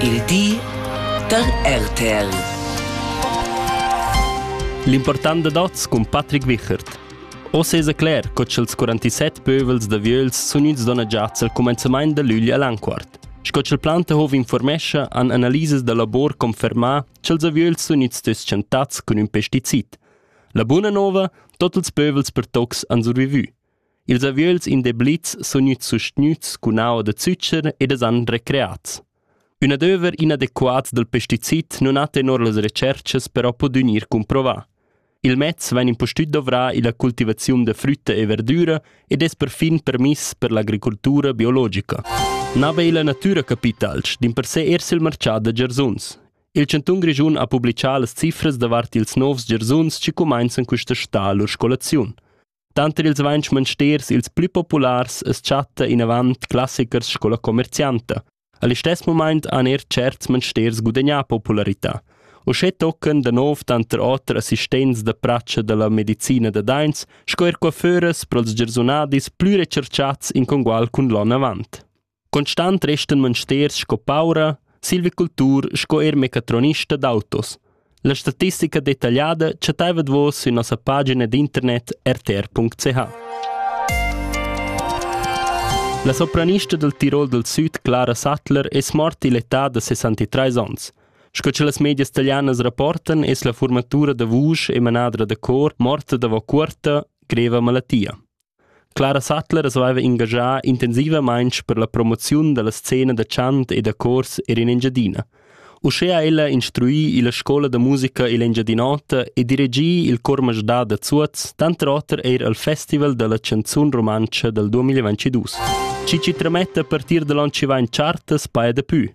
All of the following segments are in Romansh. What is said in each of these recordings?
Il di da RTL. L'important da dots cun Patrick Wichert. O sesa cler co ch'ils 47 pövels da vieus sun ins dona giats al cumenzamaint da lügl all'anquart. Sco ch'il Plantehov informescha, han analisas da labor confermà ch'ils aviöls sun its tschentats cun ün pesticid. La buna nova, tot ils pövels per tocs han survivü. Ils aviöls in Deblitz sun gnüts sustgnüts cun aua da zücher ed es han recreats. Ün adöver inadequat dal pesticid nun ha tenor las retscherchas però pudü gnir cumprovà. Il mez vain impustüt dovrà illa cultivaziun da frütta e verdüra ed es perfin permiss per l'agricultura biologica. Na be illa natüra capitalsch, dimpersè eir sül marchà da giarsuns. Il chantun Grischun ha publichà las cifras davart ils novs giarsuns chi cumainzan quista stà lur scolaziun. Tanter ils vainch mansters ils plü populars as chatta inavant classichers sco la comercianta. A listess mumaint han eir tscherts mansters gudagnà popularità. Uschè toccan da nouv tanter oter assistents da pratscha da la medicina da daints sco eir coiffeuras pro'ls giarsunadis plü recerchats in congual cun l'on avant. Constant restan monsters sco paura, silvicultur sco er mecatronista d'autos. La statistica detagliada chattaiva vos sün nossa pagina d'internet rtr.ch. La sopranista del Tirol del Süd, Clara Sattler, es morta l'età da 63 ans. Sco che las medias italianas rapportan, es la formatura da vusch e manadra da cor morta davo cuorta greva malattia. Clara Sattler svaiva ingagià intensivamaing per la promoziun da la scena da chant e da chors eir in Engiadina. Uschea ha ella instrui illa scoula da musica ill'Engiadin'Ota e dirigì il Chor Masdà da Zuoz, tanter oter eir al Festival da la chanzun rumantscha dal 2022. Chi chi trametta a partir da l'on chi vain chartas paja dapü.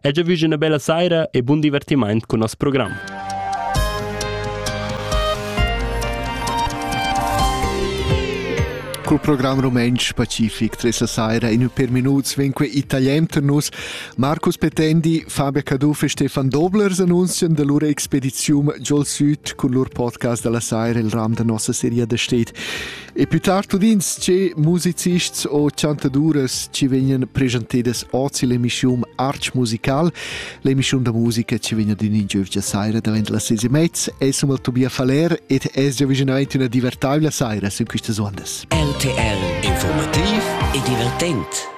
E già vus üna bella saira e bun divertimaint cun nos program. Col program rumentsch pacific tre la saira in per minuts vegn que italian ter nus Marcus Petendi, Fabia Caduff e Stefan Doblers annunzian da lur expedizium giol süd cun lur podcast dalla saira il ram da nossa seria da stet. E più tard udins che musicists o chantaduras ci vegnan presentadas ozi l'emissiun Arch Musical, l'emissiun da musica ci vegna din in giovgia saira davent la sese mezz, e sum al Tobia Faller ed es già vicinaventi una divertabile saira su quistas ondas. RTL Informativ e divertent.